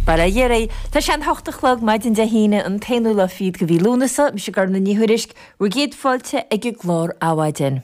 Bail ó Dhia oraibh. Tá sé an hocht a chlog maidin Dé hAoine, an t-aonú lá fichead de mhí Lúnasa. Mise Gormfhlaith Ní Thuairisg, bhur gcéad fáilte ag an gclár Adhmhaidin.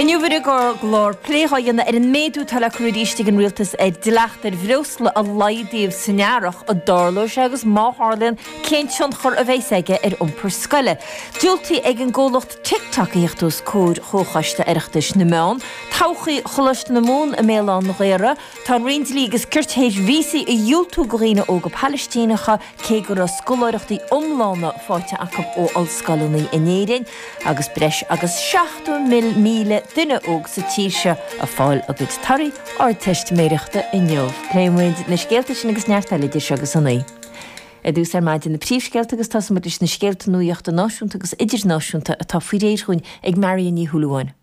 Inniu ar an gclár, plé dhá dhéanamh ar an méadú atá le cur arís ag an Rialtas ar dhleacht ar bhreosla a laghdaíodh san earrach, an dtarlóidh sé agus má tharlaíonn cén tionchar a bheidhs aige ar iompar scoile. Diúltaithe ag an gcomhlacht. TikTok a thíocht os comhair Chomhchoiste Oireachtais na Meán, Todhchaí Choláiste na Mumhan i mBéal Átha an Ghaorthaidh, Tá an Roinn Dlí agus Cirt théis víosaí a dhiúltú go dhaoine óga Palaistíneacha cé go raibh scoláireachtaí iomlána faighte acu ó ollscoileanna in Éirinn agus breis agus 70,000 duine óg sa tír seo ag fáil a gcuid torthaí Ardteistiméireachta inniu. Pléifidh muid na scéalta sin agus neart eile idir seo agus a naoi. Ar dtús ar maidin na príomhscéalta agus tosóidh muid leis na scéalta nuaíochta náisiúnta agus idirnáisiúnta atá faoi réir dhúinn ag Marion Ní Shúilleabháin.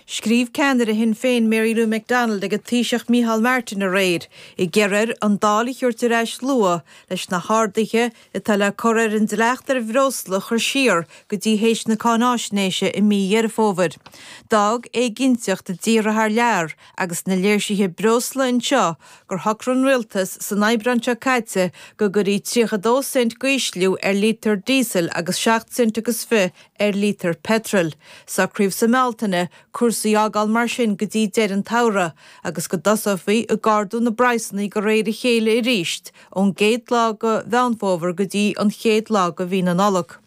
Scríobh ceannaire Shinn Féin Mary Lou McDonald ag an Taoiseach Micheál Martin aréir ag iarraidh air an Dáil a thabhairt ar ais luath leis na harduithe atá le cur ar an dleacht ar bhreosla a chur siar go dtí théis na cáináisnéise i mí Dheireadh Fómhair. D'fhág éiginnteacht i dtíortha thar lear agus na léirsithe breosla anseo gur shocraigh an Rialtas san Aibreán seo caite go gcuirfí 32 cent d'ísliú ar lítear díosail agus 7 cent agus fiche ar lítear peitril. Socraíodh sa mBealtaine cúrsaí a fhágáil mar sin go dtí deireadh an tsamhraidh agus go dtosófaí ag ardú na bpraghsanna de réir a chéile arís ón gcéad lá de Mheán Fómhair go dtí an chéad lá de mhí na Nollag.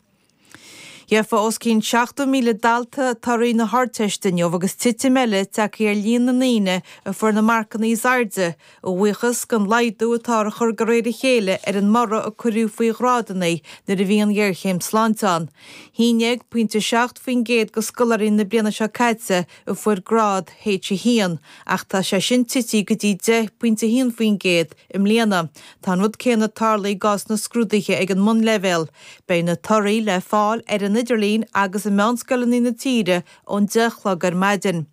Gheobhaidh os cionn 70,000 dalta torthaí na hArdteiste inniu agus titim eile tagtha ar líon na ndaoine a fuair na marcanna is airde a bhuíochas don laghdú atáthar a chur de réir a chéile ar an mborradh a cuireadh faoi ghrádanna nuair a bhí an ghéarchéim sláinte ann. 11, pointe 7%, de scoláirí na bliana seo caite a fuair grád H1 ach tá sé sin tití go dtí 10, pointe 1%, i mbliana. Tá an rud céanna tarlaithe i gcás na scrúduithe ag an mbunleibhéal, Beidh na torthaí le fáil ar an idirlíon agus i meánscoileanna na tíre ón deich a chlog ar maidin.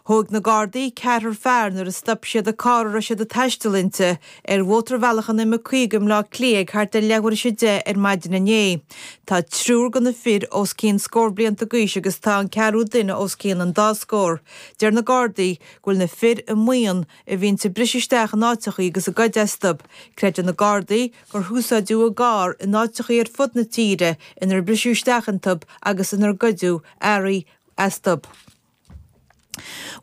Thóig na Gardaí ceathrar fear nuair a stop siad an carr a raibh siad ag taisteal inti ar mhótarbhealach an M50 i mBleá Cliaigh thart ar leathuair théis a deich ar maidin inné. Tá triúr de na fir os cionn scór blianta d'aois agus tá an ceathrú duine os cionn an dá scór. Deir na Gardaí go bhfuil na fir i mbuíon a bhíonns ag briseadh isteach in áiteachaí agus ag goid astu. Creideann na Gardaí gur húsáideadh a gcarr in áiteachaí ar fud na tíre ar briseadh isteach iontub agus inar goideadh earraí astub.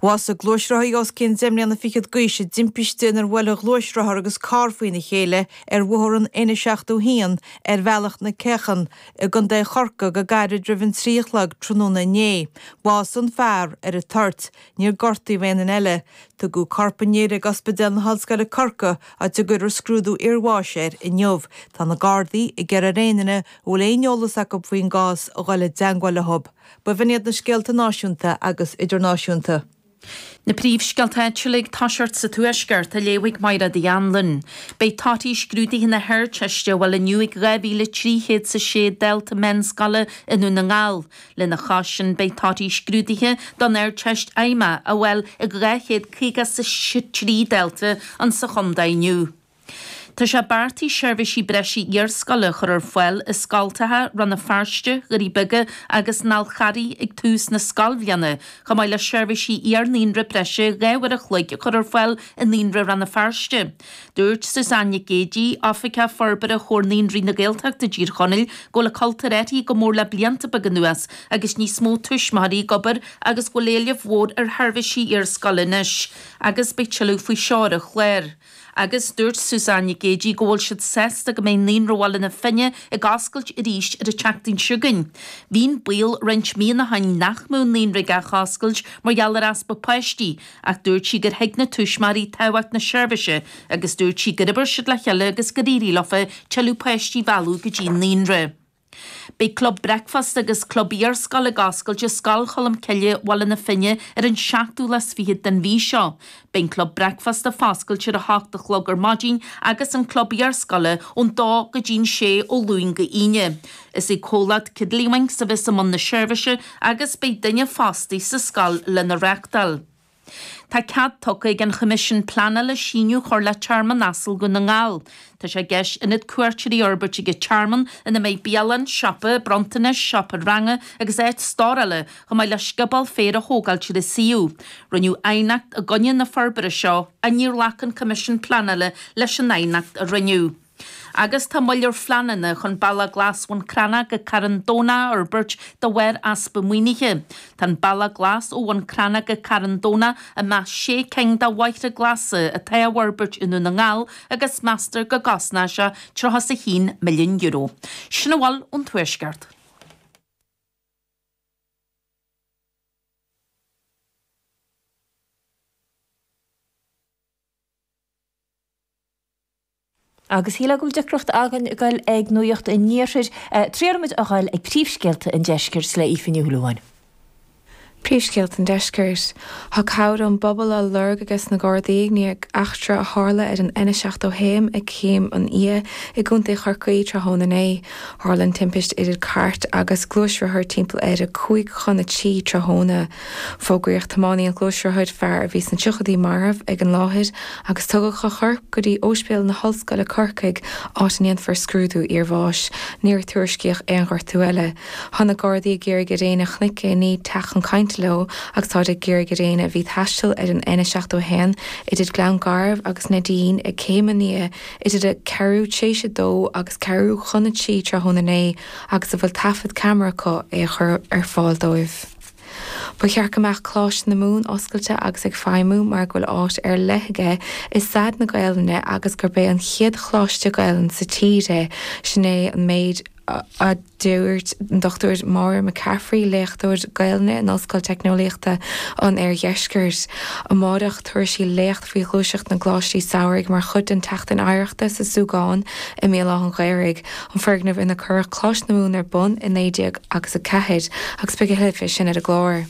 Bhásaigh gluaisrothaí os cionn deich mbliana fichead d'aois i dtimpiste inar bhuail a ghluaisrothar agus carr faoina chéile ar bhóthar an N71 ar Bhealach an Cheacha i gContae Chorcaí go gairid roimh an trí a chlog tráthnóna inné. Bhásaigh an fear ar an toirt. Níor gortaíodh aon duine eile. Tugadh corp an fhir ag Ospidéal na hOllscoile Corcaigh, áit a gcuirfear scrúdú iarbháis air inniu. Tá na Gardaí ag iarraidh ar aon duine a bhfuil aon eolas acu faoin gcás a dhul i dteangmháil leob. Ba in iad na scéalta náisiúnta agus idirnáisiúnta. Na príomhscéalta áitiúla ag toiseacht sa Tuaisceart, a léifidh Máire Ní Anluain. Beidh torthaí scrúduithe na hArdteiste á bhfáil inniu ag 2,306 dalta meánscoile i nDún na nGall. Lena chois sin, beidh torthaí scrúduithe don Ardteist Fheidhmeach á bhfáil ag 253 dalta insa chontae inniu. Tá sé beartaithe seirbhísí breise iarscoile a chur ar fáil i scoltacha Rann na Feirste, Dhoirí Beaga agus an Fháil Charraigh ag tús na scoilbhliana, chomh maith le seirbhísí iar-naíonra breise dhá uair a chloig a chur ar fáil i Naíonra Rann na Feirste. Dúirt Susanne Nic Géidigh, Oifigeach Forbartha Chomhar Naíonraí na Gaeltachta i dTír Chonaill, go bhfuil an cultúr athraithe go mór le blianta beaga anuas agus níos mó tuismitheoirí ag obair agus go bhfuil éileamh mór ar sheirbhísí iarscoile anois agus beidh tuilleadh faoi seo ar an chlár. Agus dúirt Susanne Nic Géidigh go bhfuil siad sásta go mbeidh Naíonra Bhaile na Finne ag oscailt arís ar an tseachtain seo chugainn. Bhí an baol roinnt míonna ó shin nach mbeadh an Naíonra ag athoscailt mar gheall ar easpa páistí, Ach dúirt sí gur thuig na tuismitheoirí tábhacht na seirbhíse agus dúirt sí gur oibir siad le chéile agus gur éirigh leofa tuilleadh páistí a mhealladh go dtí an naíonra. Beidh Club Breicfeasta agus Club Iar-Scoile ag oscailt i Scoil Cholm Cille, Baile na Finne, ar an 27ú den mhí seo. Beidh an Club Breicfeasta foscailte ar a hocht a chlog ar maidin agus an Club Iar-Scoile ón dó go dtí an sé ó Luain go hAoine. Is é comhlacht Tiddlywinks a bheas i mbun na seirbhíse agus beidh duine fostaí sa scoil lena reachtáil. Tá cead tugtha ag an Choimisiún Pleanála síneadh a chur le Tearmann Asal Dhún na nGall. Tá sé i gceist ionad cuairteoirí a fhorbairt ag an tearmann ina mbeidh bialann, siopa bronntanais, seomra ranga agus áit stórála, chomh maith le scioból féir a thógáil ar an suíomh. Rinneadh aighneacht i gcoinne na forbartha seo ach níor ghlac an Coimisiún Pleanála leis an aighneacht a rinneadh. agus tá moill ar phleananna chun Bealach Glas Bhun Cranncha go Carn Domhnach a fhorbairt de bharr easpa maoinithe. Tá an Bealach Glas ó Bhun Cranncha go Carn Domhnach i measc sé cinn de bhealaí glasa atá á bhforbairt i nDún na nGall agus meastar go gcosnóidh sé €31 milliún. Sin a bhfuil ón Tuaisceart. Agus shíl mé go bhfuil deacracht againn a dhul ag nuaíocht an iarthair, triailfimid a dhul ag príomhscéalta an deiscirt le Aoife Ní Shúilleabháin. Príomhscéalta an deiscirt, thá cabhair ón bpobal á lorg ages na Gardaí i ndiaidh eachtra a tharla ar an N71 ag Céim an Fhia i gContae Chorcaí tráthnóna inné. Tharla an timpist idir cairt agus gluaisrothar timpeall ar a cúig chun a trí tráthnóna. Fógraíodh tiománaí an ghluaisrothair, fear a bhí sna triochaidí, marbh ag an láthair agus tugadh a chorp go dtí Óispéal na hOllscoile Corcaigh áit a ndéanfar scrúdú iarbháis. Níor tuairiscíodh aon ghortú eile. Thá na Gardaí ag iarraidh ar éinne a chnuic éinní teacht chun cainte leo agus táid ag iarraidh ar éinne a bhí ag taisteal ar an N71 idir Gleann Garbh agus Neidín ag Céim an Fhia idir a ceathrú tréis a dó agus ceathrú chun a trí tráthnóna inné agus a bhfuil taifead ceamara acu é a chur ar fáil dóibh. Ba cheart go mbeadh Coláiste na Mumhan oscailte agus ag feidhmiú mar go bhfuil áit ar leith aige i stair na Gaelainne agus gurb é an chéad Choláiste Gaelainne sa tír é, sin é an méid a dúirt an Dr Máire McCaffrey, léachtóir Gaelainne in Ollscoil Teicneolaíochta an Oirdheiscirt. Amárach, tabharfaidh sí léacht faoi ghluaiseacht na gColáistí Samhraidh mar chuid den tSeachtain Oidhreachta sa Súgán i mBéal Átha'n Ghaorthaidh. an foirgneamh ina cuireadh Coláiste na Mumhan ar bun i naoi déag agus a ceathair agus beidh a thuilleadh fé sin ar an gclár.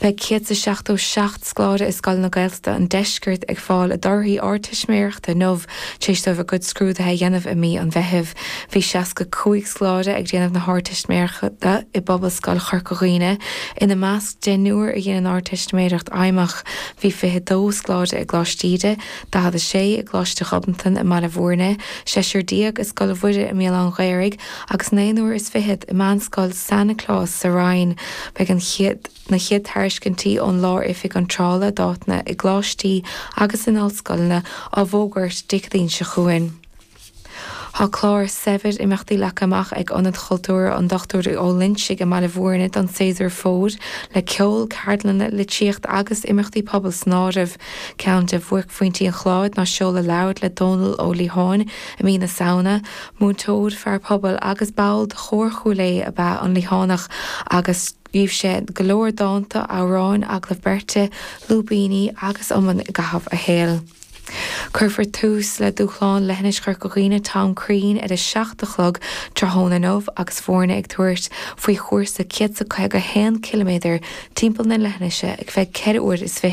Beidh céad is seachtó seacht scoláire i scoileanna Gaeltachta an Deiscirt ag fáil a dtorthaí Ardteistiméireachta inniu tar éis dóibh a gcuid scrúdaithe a dhéanamh i mí an Mheithimh. Bhí seasca cúig scoláire ag déanamh na hArdteistiméireachta i bPobalscoil Chorca Dhuibhne, ina measc deichniúr a dhein an Ardteistiméireacht Fheidhmeach. Bhí fiche dó scoláire i gColáiste Íde, 46 i gColáiste Ghobnatan i mBaile Bhúirne, seisear déag i Scoil Mhuire i mBéal Átha'n Ghaorthaidh agus naonúr is fichead i Meánscoil San Nioclás sa Rinn. Beidh na chéad tairiscintí ón Lár-Oifig Iontrála d'áiteanna i gcoláistí agus in ollscoileanna á bhfógairt Dé Céadaoin seo chugainn. Tá clár saibhir imeachtaí leagtha amach ag Ionad Cultúrtha an Dochtúir Ó Loingsigh i mBaile Bhúirne don séasúr fómhair, le ceol, ceardlanna, litríocht agus imeachtaí pobail san áireamh. Ceann de bhuaicphointí an chláir ná seoladh leabhair le Dónall Ó Liatháin i mí na Samhna. Múinteoir, fear pobail agus ball de Chór Chúil Aodha ab ea an Liathánach agus scríobh sé go leor dánta, amhráin, agallaimh beirte, lúibíní agus iomann i gcaitheamh a shaoil. Cuirfear tús le Dúshlán Leithinis Chorca Dhuibhne Tom Crean ar a 7 a chlog tráthnóna inniu agus foirne ag tabhairt faoi chúrsa 151 ciliméadar timpeall na leithinise ar feadh 4 uair is 20.